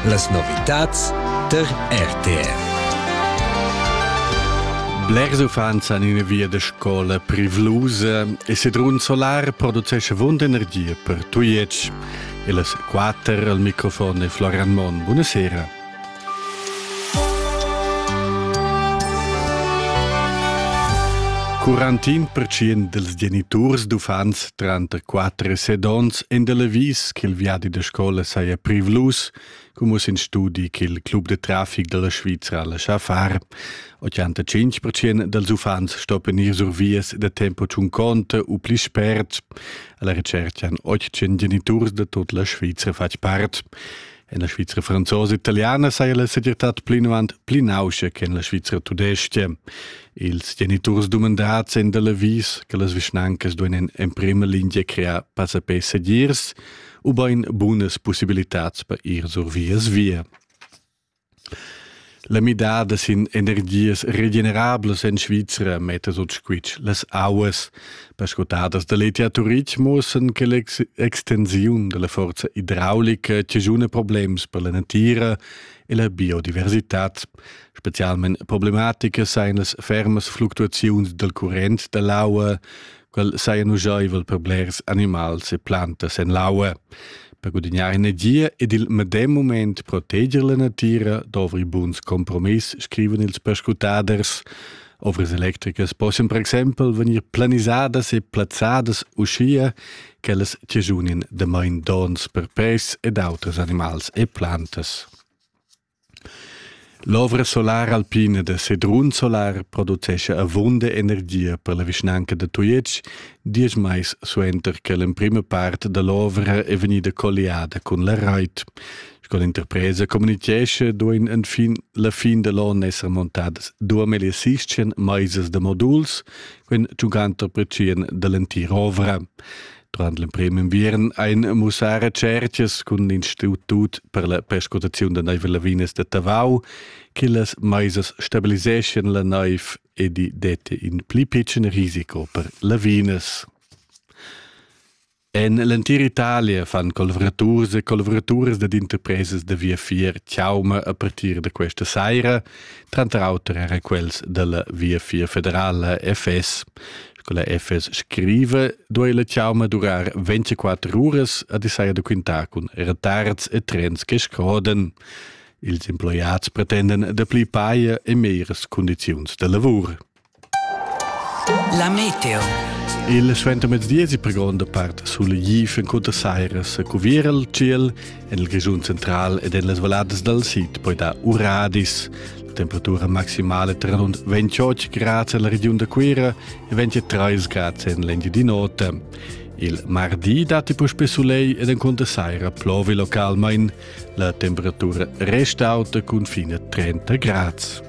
Las novitads tar RTR. Blers uffants han ina via da scola privlusa e Sedrun Solar producesce vond energia per Tujetsch. E las quatter al microfon è Florian Monn. Buonasera. Quarantin percient dels geniturs d'uffants tranter 4 e 7 ons en de Levis che il viadi de scola saja privlus, come in studi che il club de traffic della Svizzera lascia far. 85% dels uffants stoppen ir sur vias de tempo ciun conte u pli spert. Alla ricerca han 800 geniturs de tot la Svizzera fatg part. En la Svizra franzosa italiana saja la segirtad plinavant pli nauscha che en la Svizra tudestga. Ils geniturs dumandads èn da l'avis che las vischnancas duain en prima lingia crear passapè segirs ubain bunas pussibilitads per ir sur vias via. La midada sin energias regenerablas en Svizra metta sut squitsch las auas. Perscrutadas da l'ETH Turitg muossan che l'extensiun della forza idraulica chaschuna problems per la natira e la biodiversitad. Specialment problematica sein las fermas fluctuaziuns del current dell'aua, quel saja nugaivel per blers animals e plantas en l'aua. Per gudignar energia ed il medem moment proteger la natira dovri buns compromiss, scriven ils perscrutaders. Ovras electricas possono per esempio venir planisadas e plazzadas uschia ch'ellas ciajunin da main dons per pes ed auters animals e plantas. L'ovra solara alpina da Sedrun Solar producescha avunda energia per la vischnanca da Tujetsch diesch mais suenter che l'emprima part da l'ovra è vegnida colliada cun la rait. Sco l'interpresa communitgescha duain enfin la fin da l'onn esser montadas 2600 maisas da moduls, quin giugant per da l'entira ovra. Durant l'emprim inviern ein mussar cerchas cun l'institut per la perscrutaziun da neiv e lavinas da Tavau che las meisas stabiliseschien la neiv e di dette in pli pitschen risiko per lavinas. En l'entira Italia fan collavraturs e collavuraturas dad interpresas da viafier chauma a partir da questa saira, tranter auter era quels dalla Viafier federala FS. Sco la FS scriva, duei la tgauma durar 24 uras a desaia da quintar cun retards e trens che scroden. Ils emploiats pretenden da pli paia e meires condiziuns de lavur. La meteo. Il suentermezdi si per gronda part sul gif en cunta sairas a cuvir al ciel En il Grischun central ed en las valladas dal sid poi dar uradis. La temperatura maximale tra rund 28 grad en la regiun da Cuira e 23 grad en l'Engiadin'Ota. Il mardi datti puspè soleil ed encunter saira plovi localmain. La temperatura resta auta cun fine 30 grad.